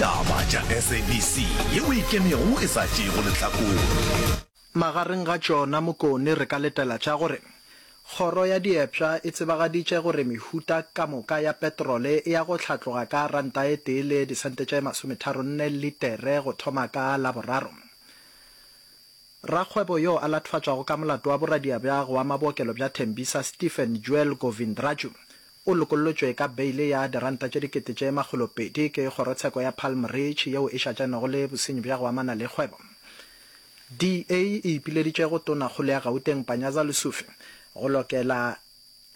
Taba tša SABC ye o ikemego e sa tšeego lehlakore. Magareng ga tšona Mokone re ka letela tša gore Kgoro ya Diepša e tsebagaditše gore mehuta ka moka ya petrole e ya go hlatloga ka ranta e tee le disente tše masometharo nne litere go thoma ka Laboraro. Rakgwebo yo a lathofatšwago ka molato wa boradiabjago wa mabookelo bja Tembisa, Stephen Joel Govindraju, O lokollotšwe ka beile ya diranta tše dikete tše makgolo pedi ke kgorotsheko ya Palm Ridge yeo e šatšanego le bosenyi bja go amana le kgwebo. DA e ipileditše go Tonakgolo ya Gauteng Panyaza Lesufi go lokela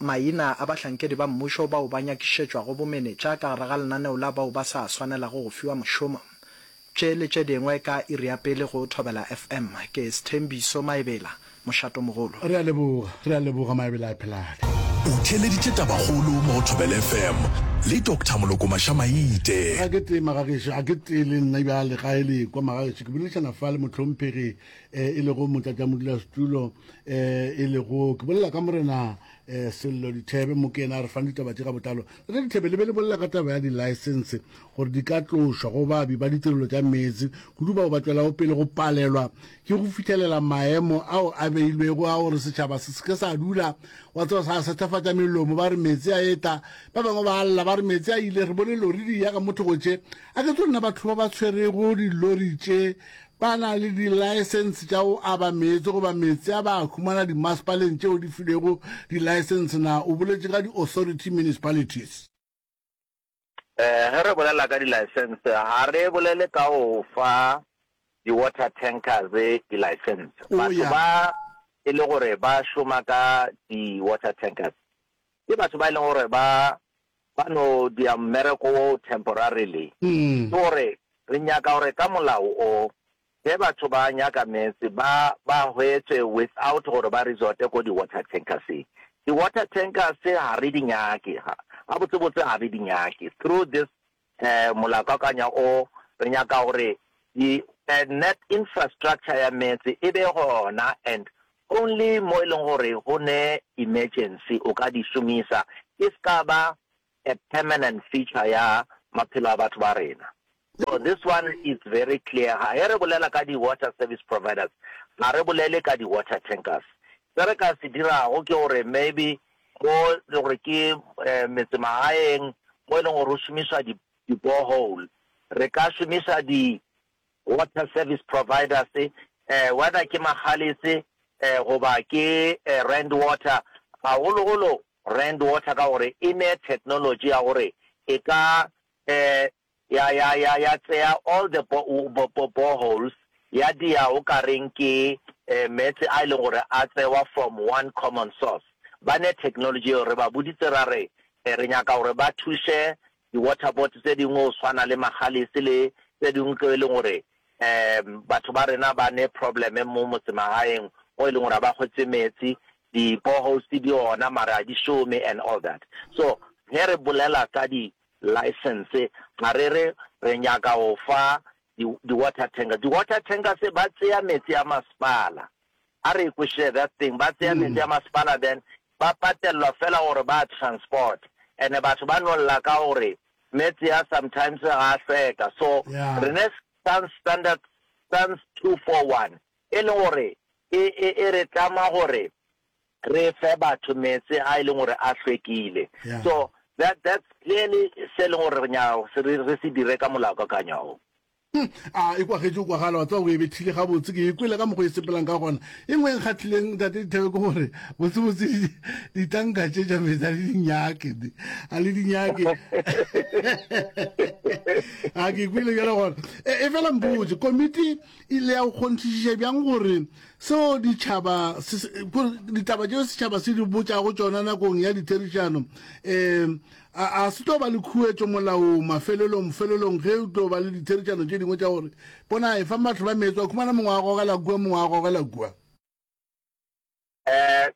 maina a bahlankedi ba mmušo bao ba nyakišetšwago bomenetša ka gare ga lenaneo la bao ba sa swanelago go fiwa mošomo Tše le tše dingwe ka iri ya pele go Thobela FM. Ke Sthembiso Maebela, mošatomogolo. Re a leboga, re a leboga Maebela a phelale. O theeleditše tabakgolo mo go Thobela FM le Doctor Moloko Maša-Maite. Ga ke tee Magagešo, a ke tee le nna bjale ga e lekwa Magagešo. Ke boledišana fa le mohlomphegi e lego motlatšamodulasetulo e lego, ke bolela ka Morena Sello Dithebe Mokena. Re fane ditaba tše ka botlalo. Tate Dithebe, le be le bolela ka taba ya di-licence. gore di ka tlošwa go babi ba ditirelo tša meetse kudu bao ba tšwelago pele go palelwa ke go fithelela maemo ao a beilwego a gore setšhaba se seke sa dula wa tseba sa sethafatša melomo ba re meetse a eta ba bangwe ba lla ba re meetse a ile re bone lori di ya ka mothogotše a ke tsonna batho ba ba tshwerego dilori tše ba na le dilaesense tša go aba meetse goba meetse a ba a humana dimasepaleng tšeo di filego dilaesense na o boletše ka di-authority municipalities um ge re bolela ka di-license ga re bolele ka o fa di-water tankers di-license oh, batho yeah. ba e le gore ba šoma ka di-water tankers ke batho ba e leng gore ba ba no dia mmereko o temporarily mm. ke gore re nyaka gore ka molao o Ge batho ba nyaka meetse ba ba hwetše without gore ba resorte ko di water tankerseng. Di water tankers ga re di nyake, ga gabotse botse ga re di nyake. Through this um molakakanya o re nyaka gore di um net infrastructure ya meetse e be gona and only mo e leng gore go ne emergency o ka di šomisa e ska ba a permanent feature ya maphelo a batho ba rena. So this one is very clear, ga ge re bolela ka di water service providers ga re bolele ka di water tankers. Se re ka se dirago ke gore maybe mo e le gore ke metse magaeng mo e leng gore go šomišwa di di borehole re ka šomiša di Water Service Providers, eh, whether ke Magalies eh, goba ke eh, Rand Water, gagologolo Rand Water ka gore e ne technology ya gore e ka eh, ya, ya, ya, ya tseya all the bo, bo, bo, boreholes ya dia o ka reng ke eh, meetse a e leng gore a tsewa from one common source. Ba ne technology eo re ba boditse ra re eh, re nyaka gore ba thuše Di-water board tse dingwe go swana le Magalies le tse dingwe tlo e leng gore um batho ba rena ba ne problem mo motsemagaeng mo e leng gore ga ba kgwetse metsi, di-boreholes di gona mara ga di šome and all that. So ge re bolela ka di-licence ga re re re nyaka go fa di-water tanker. Di-water tankers ba tseya metsi a masepala, a re e kwešile that thing, ba tseya metsi a masepala then ba patelwa fela gore ba transport and batho ba no lla ka gore metse a sometimes ga a hlweka so re ne sans standard sans 241 e leng gore e e e re tlama gore re fe batho metse a e leng gore a hlwekile so that that's clearly se e leng gore re nyaka re se dire ka molaokakanywa o Hm, a e kwagetše go kwagala, wa tseba o e bethile gabotse, ke e kwele ka mokgwa e sepelang ka gona. E nngwe e nkgatlhileng, Tate Dithebe, ke gore botsebotse di- ditanka tše tša metsi a le di nyake, di- a le di nyake. a ke e kwele bjale gona. E e fela mpotse, komiti e ile ya go kgonthišiša bjang gore seo ditšhaba se- se- gore ditaba tšeo setšhaba se di botšago tšona nakong ya ditherišano um A a se tlo ba le khuetšo molaong mafelelong, felelong ge o tlo ba le ditheritšano tše dingwe tša gore, Bona, efa mahlo ba meetse, wa khumana mongwe a gogela kua, mongwe a gogela kua. Ee,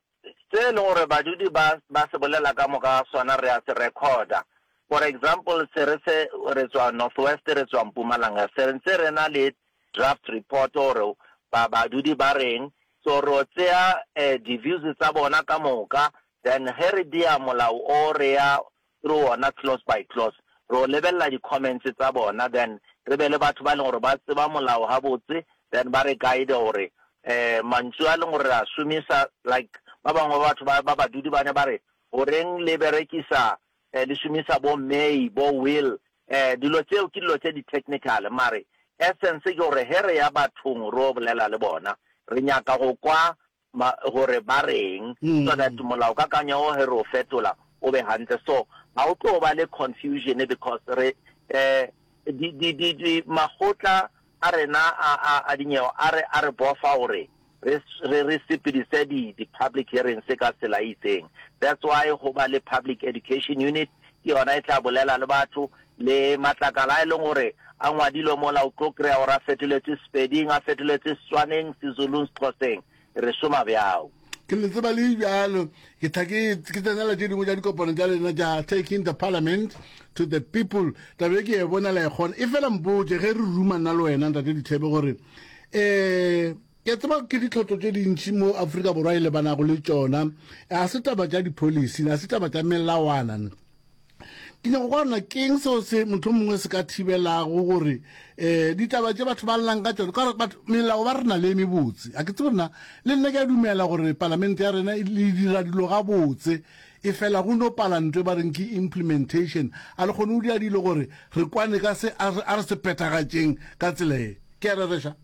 se e le gore badudi ba, ba se bolela ka moka ga sona re a se rekhoda. For example, se re se, re tswa Northwest, re tswa Mpumalanga, se ntse re na le draft report gore ba, badudi ba reng, so ro tsea eh, di-views tsa bona ka moka, Then ge re bea molao o re ya through wona clause by clause. Re o lebelela di comments tsa bona then re be le batho ba e leng gore ba tseba molao gabotse then ba re guide gore um mantšu a e leng gore re a šomisa like ba bangwe ba batho ba badudi ba ne ba re goreng le berekisa um le šomisa bo may bo will um dilo tseo ke dilo tse di-technical mare essence ke gore ge re ya bathong re o bolela le bona re nyaka go kwa Ma, gore ba re'ng, so that molaokakanywa wo ge re o fetola o be gantle. So ga o tlo ba le confusion because re, um di, di, di, di, makgotla a rena a, a, a dinyewa a re, a re bofa gore re, re, re sepedise di, di public hearings ka tsela e itseng. That's why go ba le Public Education Unit, ke yona e tla bolela le batho, le matlakala a e leng gore a ngwadilwe mola, o tlo kry-a gore a fetoletšwe Sepeding, a fetoletšwe Setswaneng, Sezulung, Sexhoseng. Re šoma bjao. ke le tseba le bjalo ke tla ke ke tsenela tše dingwe tša dikopano tša lena tša taking the parliament to the people tabe ke e bona la e kgona e fela mpotše ge re ruma nna le wena ntate dithebe gore um Ke a tseba ke ditlhotlo tše dintši mo Afrika Borwa e lebanago le tšona. A se taba tša dipholisi, a se taba tša melawana. Ke nyako kwa rona keng seo se motho mongwe se ka thibelago gore um ditaba tše batho ba llang ka tšone ka gore batho melao ba rena le mebotse a ke tse gorena le nna ke a dumela gore palamente ya rena le dira dilo ga botse e fela go no pala ntwe ba reng ke implementation a le kgone o dira dilo gore re kwane ka se a re se phethagatšeng ka tsela e ke a rereša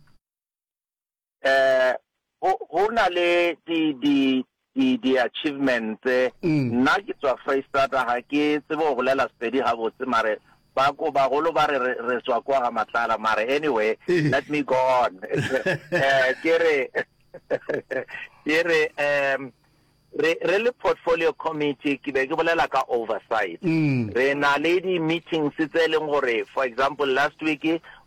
eh go go na le di di di di achievements mm. nna ke tswa Freistata ga ke tsebo go bolela Sepedi ga botse mare ba ko bagolo ba re re tswa kwa ga matlala mare anyway eh. let me go on eh ke re ke re um Re, re le Portfolio Committee, ke be ke bolela ka oversight, re na le di-meetings tse e leng gore, for example, last week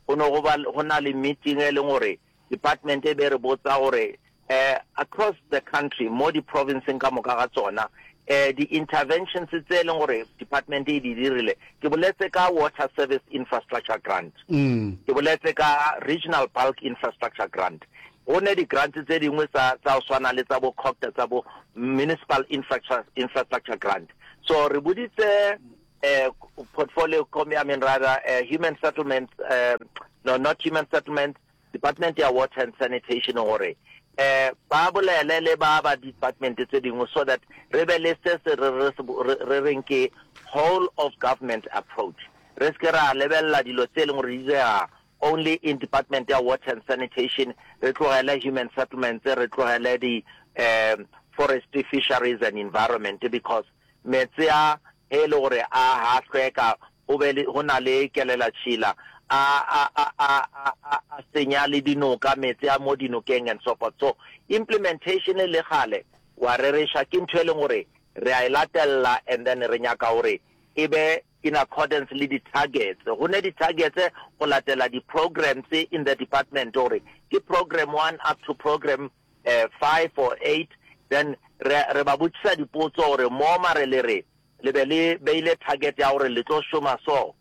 go ne go ba, go na le meeting e leng gore department e be e re botsa gore, eh, across the country, mo di-province-ng ka moka ga tsona, eh, di-interventions tse e leng gore department e di dirile, ke boletse ka Water Service Infrastructure Grant, ke boletse ka Regional Bulk Infrastructure Grant, Go ne di grants tse dingwe tsa tsa go swana le tsa bo COGTA tsa bo Municipal Infrastructure Infrastructure Grant. So re boditse eh portfolio com ya min rather eh human settlements eh no not human settlements department ya water and sanitation gore eh ba bolele le ba ba department tse dingwe so that re be le se se re re se bo- re- re reng ke whole of government approach re se ke ra lebelela dilo tse e leng gore di dira Only in department ya water and sanitation, re tlogele human settlements, re tlogele di um forestry, fisheries and environment because meetse a he le gore a ha hlweka go be le go na le kelelatšhila a a a a a a senya le dinoka meetse a mo dinokeng and so forth so implementation le gale wa rereša ke ntho e leng gore re a e latelela and then re nyaka gore e be in accordance le di targets go ne di targets go latela di programs in the department gore ke program one up to program eh, five or eight then re, re ba botšisa dipotso gore mo mare le re le be le beile target ya gore le tlo šoma so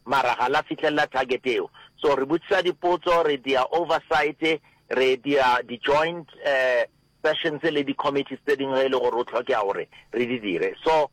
mara ga la fitlhelela target eo so re botšisa dipotso re dia oversight re dia di-joint eh, sessions le di-committees tse dingwe e le gore o tlhoke ya gore re di dire so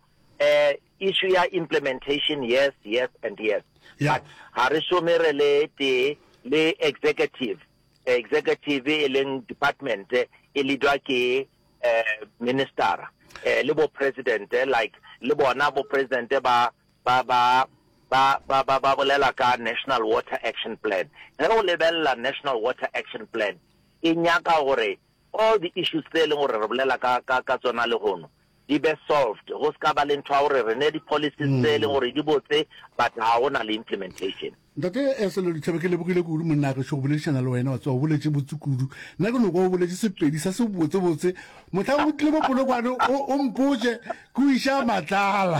Issue ya implementation yes, yes and yes yeah. But ga re šome re le tee le executive executive e leng department e leadwa ke eh, minister eh, le bo president eh, like le bona bo president ba ba ba ba ba ba ba bolela ka national water action plan ge o lebelela national water action plan e nyaka gore all the issues tse e leng gore re bolela ka ka ka tsona le gono di be solved go se ka ba le ntho ya gore re ne di-policies tse e leng gore di botse but ga go na le implementation. Ntate Sello Ditšhaba, ke lebogile kudu monna gešo go boledišana le wena wa tsewa o boletše botse kudu. Nna ke no kwa o boletše sepedi sa se botsebotse. Mohlang o tlile mo Polokwane o mpotše ke o iša matlala.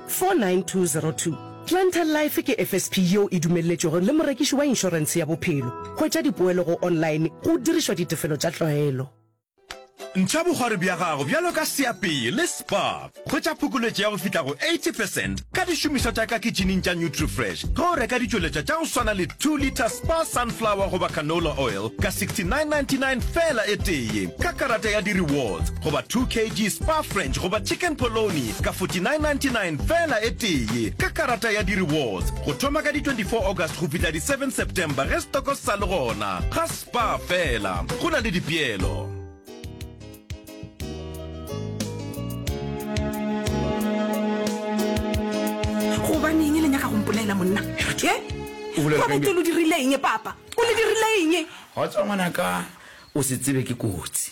49202 Clientele Life ke FSP yeo e dumelletšwego le morekiši wa inšorense ya bophelo. Hwetša dipoelo go online go dirišwa ditefelo tša tlwaelo. Ntšha bogwari bja gago bjalo ka seapeye le spa. Hwetša phokoletšo ya go fihla go 80 percent ka dišomišwa tša ka kitšhineng tša Nutrifresh ge o reka ditšweletšwa tša go swana le 2 litre spa sunflower goba canola oil ka 69.99 feela e tee ka karata ya di-rewards goba 2 kg spa french goba chicken polony ka 49.99 fela e tee ka karata ya di-rewards go thoma ka di-24 august go fihla di-7 september ge stoko se sa le gona ga spa fela go na le dipeelo gobaneng le nyaka go mpolela monna O bolela ka eng? babetelo dirileng papa o le dirileng ga tswa ngwanaka o se tsebe ke kotsi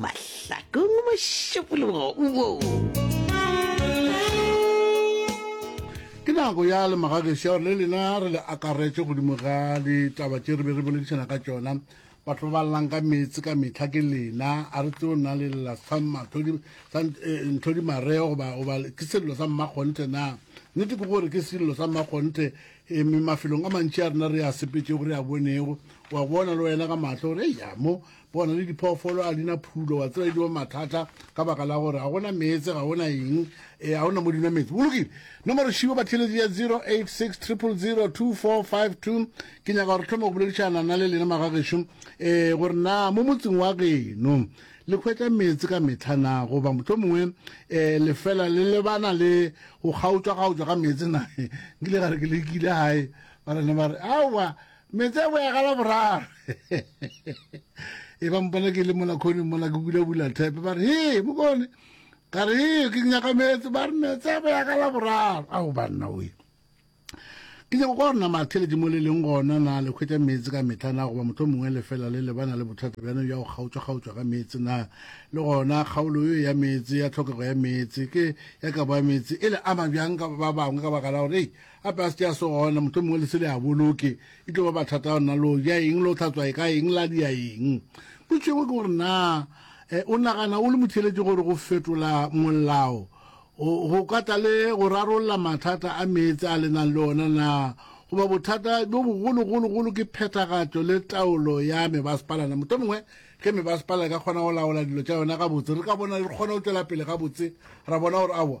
mahlakong mošupologo wo ke nako ya le magagešo ya gore le lena re le akaretše godimo ga ditaba tše re be re boledišana ka tšona batho ba ballang ka meetse ka metlha ke lena a re tseo nna le lela sa nthodi mareo goba goba ke sello sa mmakgonthe na nnete ke gore ke sello sa mmakgonthe eme mafelong a mantši a rena re a sepetšego re a bonego wa bona le wena ka matlho gore eya mo Bona le diphoofolo a di na phulo, wa tseba e diwa mathata ka baka la gore ga gona meetse, ga gona eng, e ga gona mo dinwa meetse. Bolokile. Nomoro šibo batheletsi ya 086 000 2452. Ke nyaka gore thoma go boledišana na le lena magagešo e gore na mo motseng wa geno le hwetša meetse ka mehla na goba motlho mongwe e lefela le lebana le go kgaotšwa-kgaotšwa ga meetse na nkile ga re ke lekile gae ba rena ba re aowa metse a boya gala boraro e ba mpona ke le mola kgone mola ke bulabula thepe ba re he mokone ka re he ke nyaka metse ba re metse a boya gala boraro ao banna oe ke nyako kwa rona matheletše mo le leng gona na le kgwetsa metse ka metlha na goba motho mongwe lefela le lebana le bothata bjano ya go kgaotšwa-kgaotšwa ga metse na le gona kgaolo yo ya metse ya tlhokego ya metse ke ya kabo ya metse e le ama bjang ka ba bangwe ka baka la gore Gape a se ke a se gona, mohlomongwe le se le a boloke. E tlo ba bathata ya lona lo ja eng, lo tlhatswa e ka eng, la dia eng. Potso engwe ke gore na eh, o nagana o le motheeletše gore go fetola molao go, go ka tla le go rarolla mathata a meetse a lenang le ona na? Goba bothata bjo bogologologolo ke phethagatšo le taolo ya mebasepala na? Mohlomongwe ge mebasepala e ka kgona go laola dilo tša yona gabotse, re ka bona re kgona go tšwela pele gabotse, ra bona gore awa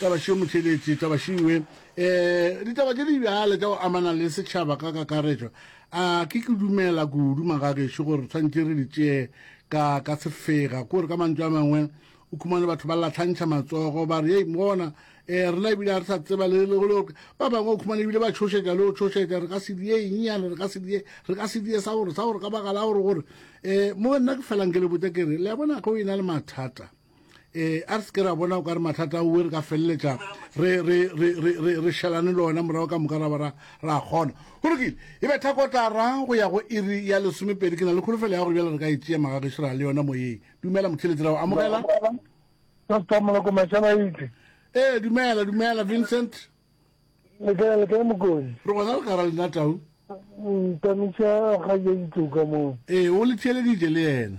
Tabašo Motšheletši, Tabašo Iwe, eh, ditaba tše di bjale tša go amana le setšhaba ka kakaretšo, a ke ke dumela kudu magagešo gore re tshwantše re di tšee ka, ka sefega, kore ka mantšu a mangwe o khumane batho ba latlhantšha matsogo ba re yei mona eh, rena ebile ga re sa tseba le le go ba bangwe o khumane ebile ba tšhošetša le go tšhošetša re ka se die enyane re ka se die re ka se die sa gore sa gore ka bagala gore gore eh, mo nna ke felang ke le botsa ke re le ya bona go e na le mathata eh a re se ke ra bona o ka re mathata oe re ka feleletša re šelane le ona morago ka moka ra ba ra kgona go lokile e be thakotara go ya go iri ya lesomepedi ke na le kholofelo ya gore bjale re ka e tšea magageši ra le yona moyeng dumela motheletsi ra go amogela ee dumela dumela vincent re gona le kara lena tau ee o le theeleditše le yena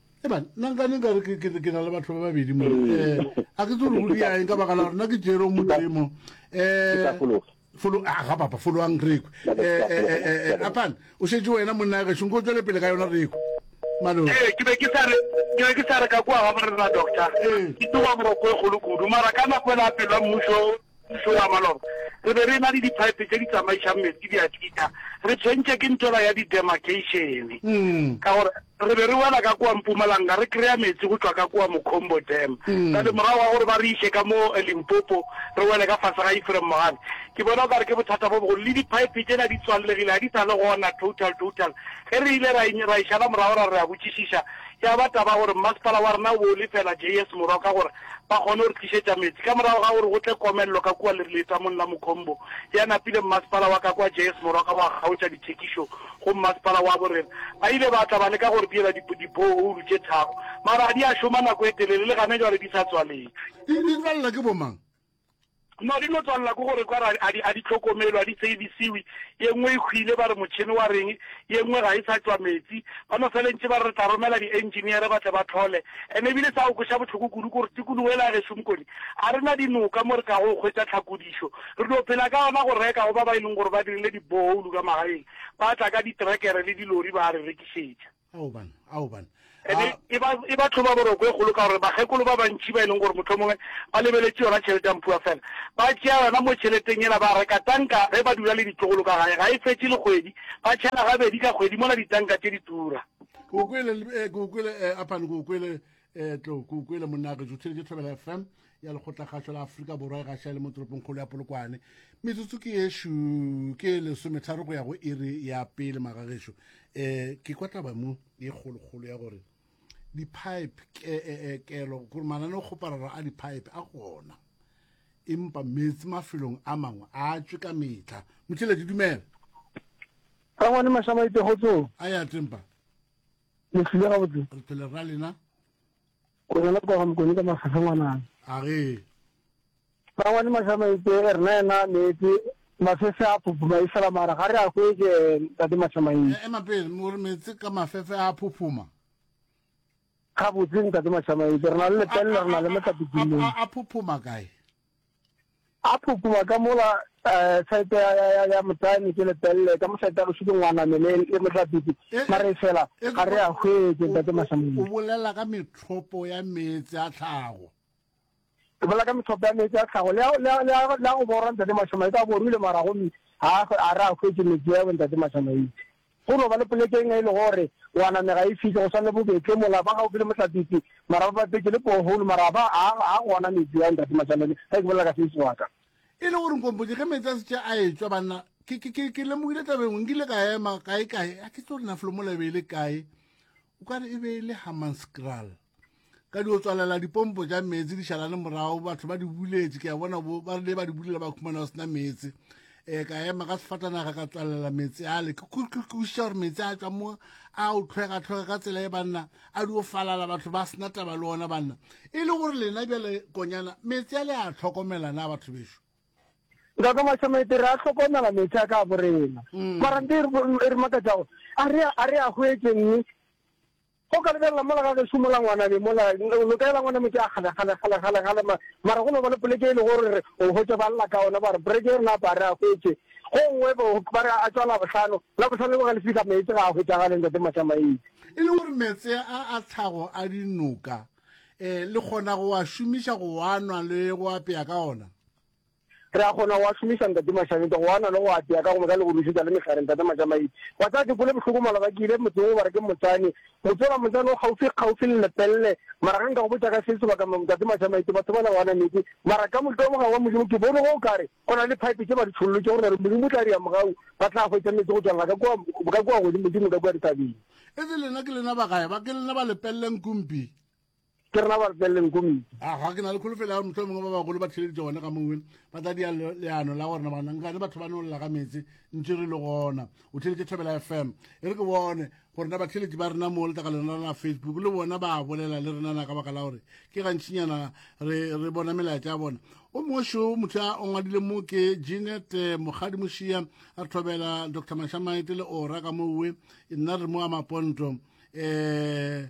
Eban, nna nka ne nka re ke- ke ke na le batho ba babedi mo. Mm. Eh, a ke tse gore go Ke tla- diaeng ka baka la gore nna ke jere o motemo. ke tla Eh, fologa folo a ga papa foloang reko Ba ba- ba fologa, ba fologa. apan o šetse wena monna ya gešo nko tswele pele ka yona reko malo ee ke be ke sa re ke be ke sa re ka kua ga morena doctor Ee. ke tsoga moroko e kgolo kudu mara ka nako e la pelo ya mmušo Mmušo wa maloba re be re na le diphaepe tše di tsamaišang meetse di a tšita, re tshwentše ke ntwela ya didemarkeišene ka gore re be re wela ka kua Mpumalanga re kry-a meetse go tšwa ka kua Mocombo Dam. Bjale morago ga gore ba re iše ka mo Limpopo re wele ka fase ga Ephraim Mogale, ke bona o ka re ke bothata bo bogolo. Le diphaepe tšela di tswallegile, ga di sa le gona total total. Ge re ile ra ra e šala morago ra re re a botšišiša, ya ba taba ya gore mmasepala wa rena o be o lefela JS Morwa ka gore, Ba kgone go re tlišetša meetse. Ka morago ga gore go tle komello ka kua letamong la Mukhombo, ya napile mmasepala wa ka kwa Jayes Morwa ka go a kgaotša dithekišo go mmasepala wa Borena. Ba ile ba tla ba leka go re diela di, diborehoulu tše tharo, mara ga di a šoma nako e telele, le gane jwale di sa tswaletšwe. Di, di tswalela ke bomang? No di no tswalela ko gore kwa a di a di tlhokomelo a di savisiwi ye nngwe e hwile ba re motšhene wa reng ye nngwe ga e sa tšwa metsi ba no felentše ba re re tla romela di engineere ba tle ba tlhole ene ebile sa o kweša bohloko kudu gore tikologo ela gešo mokone a re na dinoka mo re ka go hwetša tlhakodišo re no phela ka yona go reka go ba ba e leng gore ba dirile di boholu ka magaeng ba tla ka ditrekere le dilori ba re rekišetša Aoban, aoban. Ene A, e ba, e ba tlhoba boroko e kgolo ka gore bakgekolo ba bantši ba e leng gore mohlomongwe ba lebeletše yona tšhelete ya Mpua fela, ba tšea yona mo tšheleteng yela ba reka tanka ge ba dula le ditlogolo ka gae. Ga e fetše le kgwedi, ba tšhela gabedi ka kgwedi mola ditanka tše di tura. Ke go kwele, le, eh, ke go kwele, eh, Apan, ke go kwele, e tlo ko ko ile monna ge jothile ke thobela fm ya lekgotlakgašo la aforika borwa e gaša le mo toropongkgolo ya polokwane metsotso ke yešu ke lesometharo go ya go iri ya pele magagešo um eh, ke kwa taba mo e kgolokgolo ya gore di-pipe eh, eh, kelo gore manane o kgopararo a di-pipe a gona empa metsi mafelong a mangwe a tswe ka metlha motšheledi dumela rangwane mašamaitse go tsong a ya tempa le tlile ga botse re phele ra lena o na le kwa ga mokone ka mafafa ngwanana a re ba ngwane mashama itse e rena ena metse mafefe a phophoma e fela mara ga re a kwetse tate mashama e eh, ema pele mo re metse ka mafefe a phophoma ga botse ntate mashama itse re na le lepelle re na le motlapikelong a phophoma kae A phukuma ka mola saete ya motane ke lepelle, ka mo saete ya boso ke ngwaname le motlapiti, mara efela ga re a hwetše, Ntate Masamune. O bolela ka methopo ya meetse a tlhago. Ke bolela ka methopo ya meetse a tlhago, le a go borwa, Ntate Masamane, ka bo rwile mara gomme ga re a hwetše meetse ao, Ntate Masamane. Go no ba le poleke eng ge e le gore o a namega e fihla, go swana le bo Betle mola, ba gaufi le Mohlapetše, mara ba bapetše le borehole, mara ga ba, ga, ga gona metsi wa Ntate Matšhalane, ge ke bolela ka Seiso wa ka. E le gore nkompotše, ge meetse a šetše a etšwa, banna, ke, ke, ke, ke lemogile taba e nngwe, nkile ka ema, kae, kae, a ke tsebe gore na Flomola e be e le kae, o ka re e be e le Hammanskraal. ka di o tswalela dipompo tša meetse di šalane morago batho ba di buletše ke a bona ba rile ba di bulela ba khumana go sena meetse um ka ema ka sefatanaga ka tswalela meetse ale ke kwešiša gore meetse a tswa mo a o tlhwegatlhwega ka tsela e banna a di o falala batho ba sena taba le ona banna e le gore lena bjale konyana meetse a le a tlhokomela na batho bešo nka ka mašamete re a tlhokomela meetse a ka borena mm. mara nte e re makatsago a re a hwetseng Go ka lebelela mola ga gešo mola ngwana be mola lo ka ela ngwana metsi a kgale kgale kgale kgale kgale ma mara go no ba le poleke e le gore re o hwetše ba lla ka ona ba re breke rena a pare a hwetše go nngwe bo ba re a tswala bohlano la bohlano le go ga le fihla meetse ga a hwetša ga le ntate matšamaetse e le gore meetse a a tlhago a dinoka eh le kgona go a šomiša go a nwa le go apea ka ona. Re a kgona go a šomiša, Ntate Mashanita, go a na le go a tea ka gomme ka le go rušetša le mehlare, Ntate Majamaile. Wa tseba, ke kwele bohloko mola ba ke ile motseng wo ba re ke Motsane. Motse ola Motsane o kgaufsi kgaufsi le Lepelle. Mara ge nka go botša ka se sebaka, Mme Ntate Mashamaite, batho bale go ana meetse. Mara ka mohlolo mogare wa Modimo ke bone go o kare go na le phaepe tše ba di tšhollotše go na re Modimo o tla dira mogau ba tla hwetša meetse go tšwalela ka kua, ka kua godimo, Modimo ka kua dithabeng. Etse lena ke lena ba gae ba? Ke lena ba Lepelle Nkumpi? Ke rena ba re feleleng komiti. A ga ke na le kholofelo ya gore motlho mongwe ba bagolo ba theleditse gone ga mongwe ba tla dia leano la gore na bana nkane batho ba nolola ga metse ntse re le gona o theleditse thobela fm e re ke bone gore na batheletsi ba rena mo letaka lena la facebook le bona ba bolela le rena na ka baka la gore ke gantšinyana re re bona melaetsa ya bona o mošo motho a ongwadile mo ke jenet eh, mogadi mošia a re thobela dr mashamaete le ora ka mowe nna re mo a maponto um eh,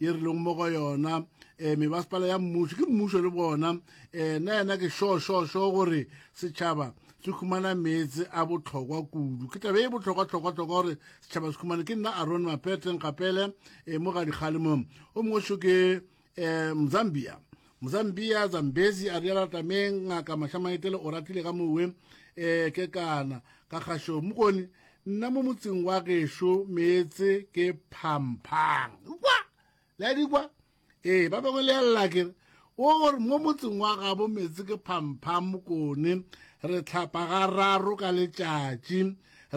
ye re leng mo go yona um eh, mebasepala ya mmušo ke mmušo le bona um eh, na yena ke šošošo gore setšhaba se humana meetse a botlhokwa kudu ke tabe e botlhokwatlhokwatlhokwa gore setšhaba se humane ke nna aron mapeteng gapele um eh, mo ga dikgalemong o mongwe šo ke um mzambia mzambia zambezi a riala tameng ngaka mashamaetele o ratile ka mowe um ke kana ka kgašo mokone nna mo motseng wa gešo meetse ke phamphang kwa le a di kwa ee ba bangwe le ya lela kere o gore mo motseng wa gabo meetse ke phamphang mokone re tlhapa ga raro ka letšatši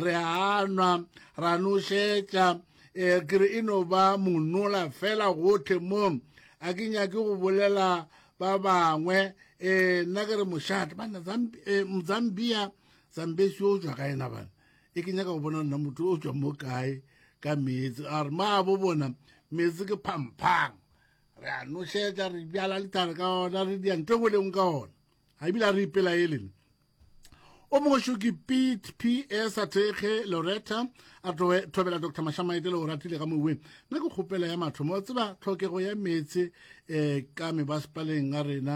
re anwa ra nošetša um eh, kere e no ba monola fela gothe mo a ke nyake go bolela ba bangwe um nna ke re mošate banna eh, mzambia sambesi o tswa kae na bana e ke nyaka go bona nna motho o tswa mo kae ka meetse a re ma bo bona meetse ke phamphang re a nošetša re bjala lithare ka ona re dia nto engwe lengwe ka ona ga ebile a re ipela e lene o mongwe šo ke pete p s a thekge loretta a thobela dr mashamaete le o ratile ka moweng nna ke kgopela ya mathomo tseba tlhokego ya meetse um ka mebasepaleng a rena